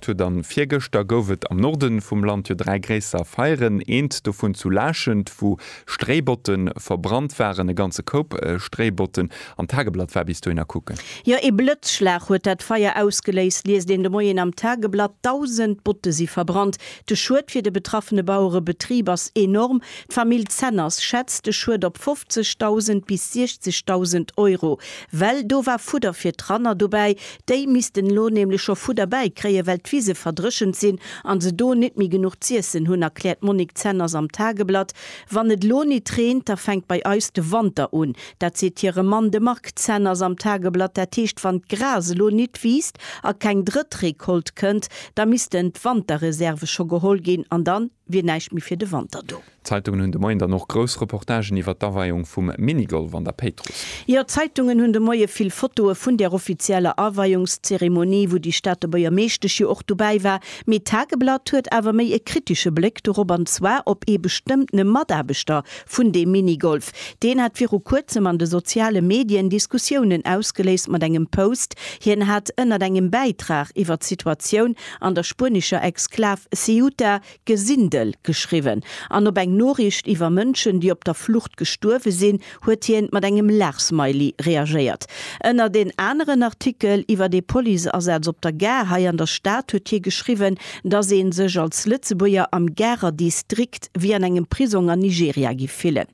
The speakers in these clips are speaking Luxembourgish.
huet an virgëschter gouf et am Norden vum Land jo 3 gréisser Feieren, eent dovun zu Laaschent wou Stréibotten verbrannt waren, e ganze Koup Stréibotten, an d'Tageblatt war bis dohin a kucken. Jo, ee Blëtzschlag huet dat Feier ausgeléist, liest een de Moien am Tageblatt. 1.000 Botte si verbrannt. De Schued fir de betraffene Bauerebetrib ass enorm. D'Famill Zenners schätzt de Schued op 50.000 bis 60.000 Euro, well do war Fudder fir d'Ranner dobäi, Déi missten elo nämlech scho Fudder bäikréien, well d'Wise verdréchent sinn a se do nit méi genuch z'iessen hunn, erkläert d'Monique Zenners am Tageblatt. Wann et elo nit reent, da fänkt bei eis de Wanter un. Dat seet hire Mann, de Marc Zenners am Tageblatt. Dat heescht, wann d'Gras elo nit wiisst a keng drëtt Recolte kënnt, da missten d'Wanterreserve scho geholl ginn an dann wier näischt méi fir de Wanter do. D'Zeitungen hunn de Moien dann och grouss Reportagen iwwert d'Aweiung vum Minigolf an der Péitruss. Jo, d'Zeitungen hunn de Moie vill Fotoe vun där offizieller Aweiungszeremonie, wou déi Stater Buergermeeschtesch jo och dobäi war. Mee d'Tageblatt huet awer méi e kritesche Bléck dorop, an zwar op ee bestëmmtene Mataarbechter vun deem Minigolf. Deen hat viru kuerzem an de soziale Medien Diskussiounen ausgeléist mat engem Post. Hien hat ënnert engem Bäitrag iwwert d'Situatioun an der spuenescher Exklav Ceuta Gesindel geschriwwen, an op eng Noriicht iwwer Mënschen, déi op der Flucht gestuerwe sinn, huet hien mat engem Laachsmiley reagéiert. Ënnert en aneren Artikel iwwer ee Policeasaz op der Gare hei an der Stad huet hie geschriwwen, dass ee sech als Lëtzebuerger am Garer Distrikt wéi an engem Prisong an Nigeria giff fillen.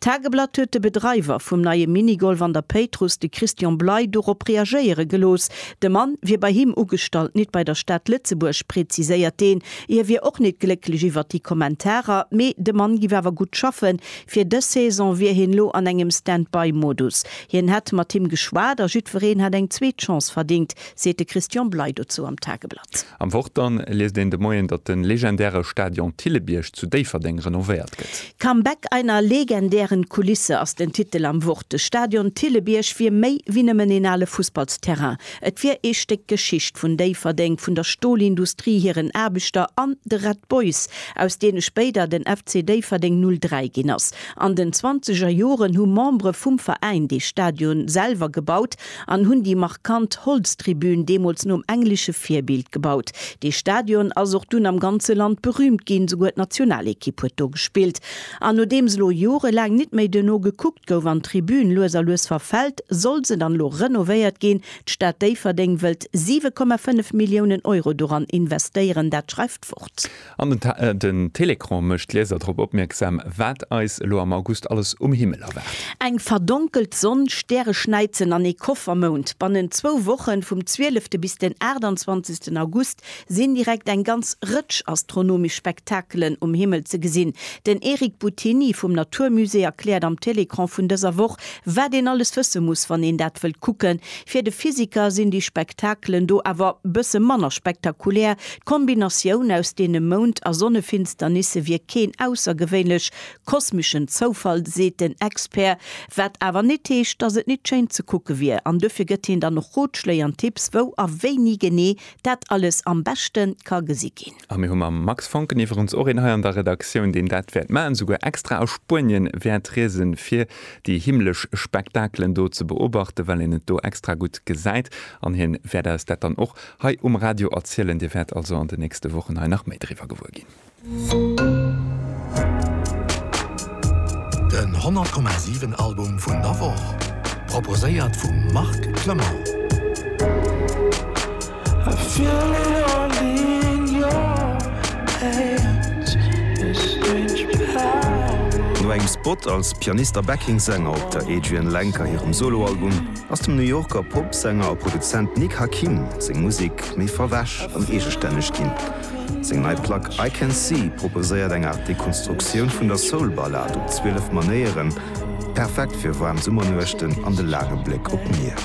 D'Tageblatt huet de Bedreiwer vum neie Minigolf an der Péitruss, de Christian Bley, dorop reagéiere gelooss. De Mann wier bei him ugestallt, nit bei der Stad Lëtzebuerg, präziséiert deen. Hie wier och nit glécklech iwwert déi Kommentarer, mee de Mann giff awer gutt schaffen. Fir dës Saison wier hien lo an engem Stand-by-Modus. Hien hätt mat him geschwat a jiddwereen hätt eng zweet Chance verdéngt, seet de Christian Bley dozou am Tageblatt. Am Wort dann liest een de Moien, datt de legendäre Stadion Thillebierg zu Déifferdeng renovéiert gëtt. Comeback einer legendären Kulisse ass den Titel am Wort. De Stadion Thillebierg wier méi wéi nëmmen een ale Fussballsterrain. Et wier ee Stéck Geschicht vun Déifferdeng, vun der Stolindustrie, hiren Aarbechter an de Red Boys, aus deene spéider den FC Déifferdeng 03 ginn ass. An den zwanzeger Joren hu Membere vum Veräin dee Stadion selwer gebaut an hunn déi markant Holztribün, deemools nom englesche Virbild, gebaut. Dee Stadion ass och dunn am ganze Land berüümt ginn, souguer d'Nationalekipp huet do gespillt. An nodeems elo jorelaang nit méi duerno gekuckt, Gouf an d'Tribün lues a lues verfällt, soll se dann elo renovéiert ginn. D'Stad Déifferdeng wëllt 7,5 Milliounen Euro doran investéieren, dat schreift d'Wort. An den Télécran mécht d'Lieser drop opmierksam, wat eis elo am August alles um Himmel erwaart. Eng verdonkelt Sonn, Stäreschnäizen an ee Koffermound. Bannent zwou Woche vum 12. bis den 28. August sinn direkt eng ganz Rëtsch astronomesch Spektakelen um Himmel ze gesinn. Den Eric Buttini vum Natur Musée erkläert am Télécran vun dëser Woch, wat een alles wësse muss, wann een dat wëllt kucken. Fir de Physiker sinn déi Spektakelen do awer bësse manner spektakulär. D'Kombinatioun aus deene Mound a Sonnefinsternisse wier keen aussergewéinlech kosmeschen Zoufall, seet den Expert. Wat awer nit heescht, datt et nit schéin ze kucke wier. An dofir gëtt hien dann och Rotschléi an Tipps, wou a wéini genee Dat alles am beschte ka gesi ginn. A mir hu mam Max Foncken iwwerens och een hei an der Redaktioun, deen dat wäert maachen, souguer extra a Spuenien wäert riesen, fir déi himmlesch Spektakelen do ze beobachten, well een et do extra gutt gesäit. An hien wäert eis dat dann och hei um Radio erzielen. Dir wäert also an den nächste Wochen hei nach méi driwwer gewuer ginn. Den 100,7 Album vun der Woch, proposéiert vum Marc Clement. No engem Spot als Pianist a Backing-Sänger op der Adrianne Lenker hirem Solo-Album, ass dem New Yorker Pop-Sänger a Produzent Nick Hakim seng Musek méi verwäsch an eegestänneg ginn. Seng nei Plack I Can See proposéiert eng Aart Dekonstruktioun vun der Soul-Ballad op 12 Manéieren, perfekt fir waarm Summernuechten an de laange Bléck op d'Mier.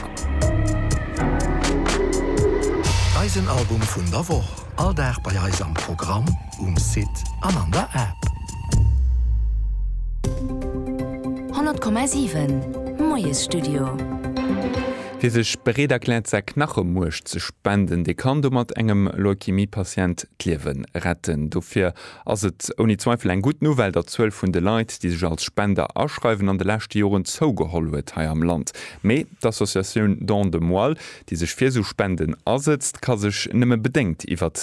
Eisen Album vun der Woch, all Dag bei eis am Programm, um Site an an der App. 100,7 Moiesstudio. Wie sech bereet erkläert säi Knachemuerch ze spenden, dee kann domat engem Leukämie-Patient d'Liewe retten. Dofir ass et ouni Zweifel eng gutt Nouvelle, datt d'Zuel vun de Leit, déi sech als Spender aschreiwen, an de leschte Joren zougeholl huet hei am Land. Mee d'Associatioun Don de Moelle, déi sech fir esou Spenden asëtzt, ka sech nëmme bedéngt iwwert.